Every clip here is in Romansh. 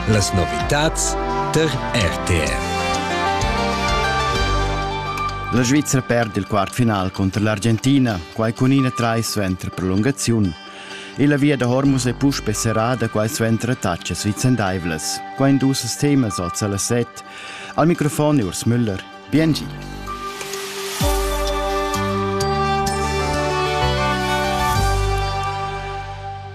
Las novitads tar RTR. La Svizzera perd il quartfinal contro l'Argentina, quai cun ina trai suenter prolungaziun. E la via da Hormuz è puspe serrada quai suenter attacas vicendaivlas. Quai in dus temas oz alla set. Al microfon Urs Müller. Biengi.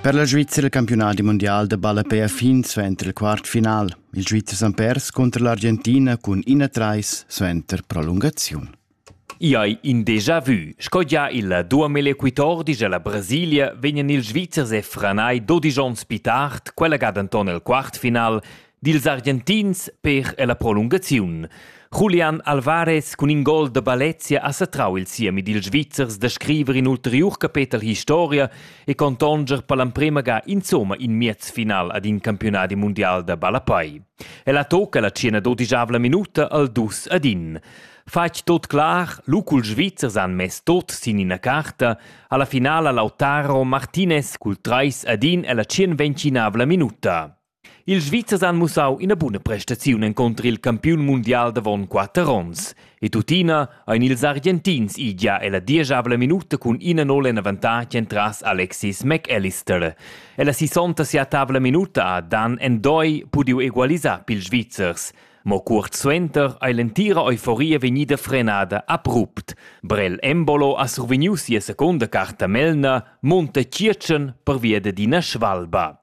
Per la Svizzera il campiunadi mondial da ballapè ha fin suenter il quartfinal. Il Svizzer s'han pers contro l'Argentina cun 1-3 suenter prolungaziun. I hai in déjà vu. Sco gia il duamelequitor dice la Brasilia vegnan ils Svizzers e Franai 12 onns pi tard, quella ga denton el quartfinal, dils Argentins per ella prolungaziun. Julian Alvarez cun in gol da Balezia ha satrau il siemi dils Svizzers da scriver in ulteriur capetel historia e contonger per l'emprema ga insomma in miez final ad in campionadi mondial da ballapai. Ella tocca la cena dodigiavla minuta al dus ad in. Fatg tot clar, lucul Svizzers han mess tot sin ina carta, alla finala Lautaro Martinez cul trais ad in ella tschien vencinavla minuta. Ils Svizzers han mussau ina buna prestaziun encunter il campiun mundial davon quater onns. E tuttina ein ils Argentins idia ella dieschavla minuta cun ina nol en avantatg entras Alexis McAllister. Ella sisonta sia tavla minuta ha Dan Endoi pudiu egualisar pils Svizzers. Mo cuort suenter ei l'entira euforia vegnida frenada abrupt. Brel Embolo ha survegniu sia secunda carta Melna, Monte Circen pervia d'ina svalba.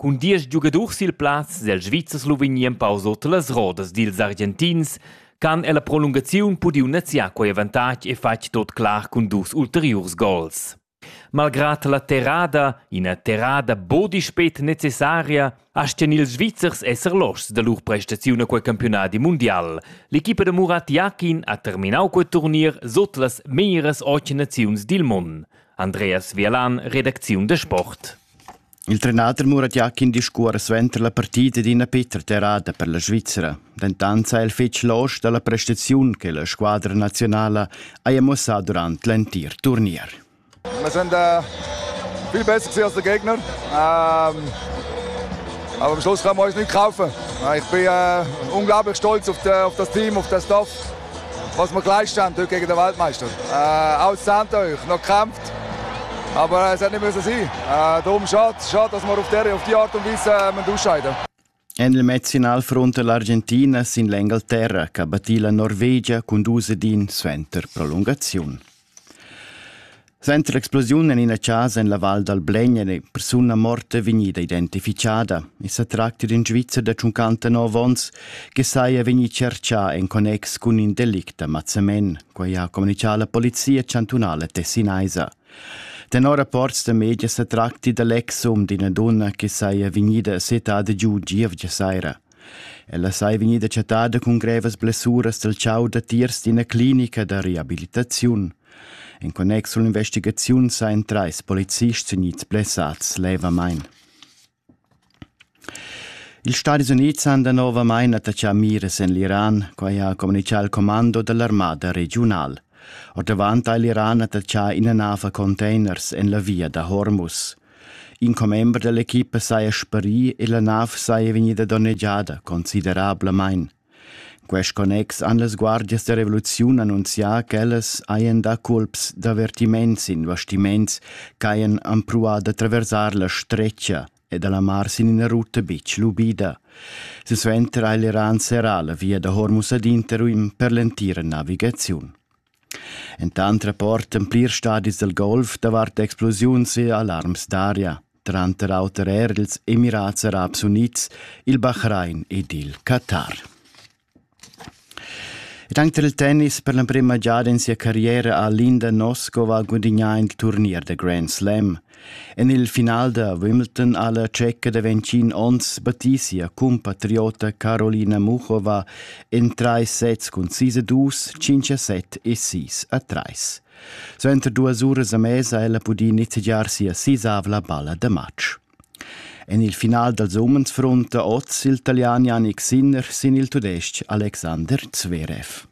Cun diesch giugadurs sil plaz sil Svizzer Sloveni empau sut las rodas dils Argentins han ella prolungaziun pudiu neziar quei avantatg e fatg tot clar cun dus ulteriurs gols. Malgrad la terrada, ina terrada buca spet necessaria, astgan ils Svizzers esser loschs da lur prestaziun a quei campiunadi mundial. L'equipa da Murat Jakin ha terminau quei turnier sut las meglieras ocht naziuns dil mund. Andreas Vialan, redacziun da sport. Il trenader Murat Jakin discuora suenter la partida d'ina petra terrada per la Svizzera. Dentant sa el fetg losch dalla prestaziun che la squadra nazionala haja muossà durant l'entir turnier. Wir sind äh, viel besser gewesen als der Gegner. Ähm, aber am Schluss kann man uns nicht kaufen. Ich bin äh, unglaublich stolz auf, die, auf das Team, auf das Dorf. Was wir gleich durch gegen den Weltmeister. Äh, aussahnt euch, noch gekämpft. Aber es hat nicht müssen sein. Äh, darum schade, schade, dass wir auf, der, auf die Art und Weise äh, ausscheiden En il mezzfinalfront l'Argentina sin l'Engalterra che batì la Norvegia con 2 din suenter prolungaziun. Suenter l'explosiun en ina casa en la Val dal Blegn è persuna morta vegnida identificada. I sa tracti d'in Svizzer da 59 onns che saja vegnì tschertgà en connex cun in delict da mazzamen, quai ha communitgà la polizia chantunala tessinaisa. Tenor rapports da media sa tracti da l'ex um d'ina dunna che saja vegnida settada giu gievgia saira. Ella sei vegnida chattada cun grevas blessuras dal tgau datiers d'ina clinica da reabilitaziun. In connex culla investigaziun sain trais polizists gnits blessats levamein. Ils Stadis Unids han danovamain attaccà miras en l'Iran, quai ha communichà il commando dall'armada regiunal. Ordavant ha l'Iran attaccà ina nav a containers en la via da Hormuz. In commember dall'equipa saja sparì e la nav saja vegnida donnegiada considerablamain. Quest connex han las guardias da revoluziun annunzià ch'ellas hajan dà culps d'avertiments investiments ch'hajan empruà da traversar la stretga e da la mar sin ina ruta bitg lubida. Silsuenter ha l'Iran serrà la via da Hormuz ad Interim per l'entira navigaziun. Entant rapportan plirs stadis dal golf davart explosiuns e alarms d'aria, tranter auter er ils Emirats Arabs Unids, il Bahrain ed il Qatar. Tanto il tennis per l'emprima giada in sia carriera ha Linda Noskova gudignà il turnier da Grand Slam – En il final da Wimbledon ha la tscheca da 25 onns Batisia compatriota Carolina Muchova en trais sets cun 6 a 2, 5 a 7 e 6 a 3. Suenter duas uras a mesa ella pudì nizzegiar sia sisavla balla da matg. En il final dals umens frunta oz il Italian Janik Sinner sin il tudestg Alexander Zverev.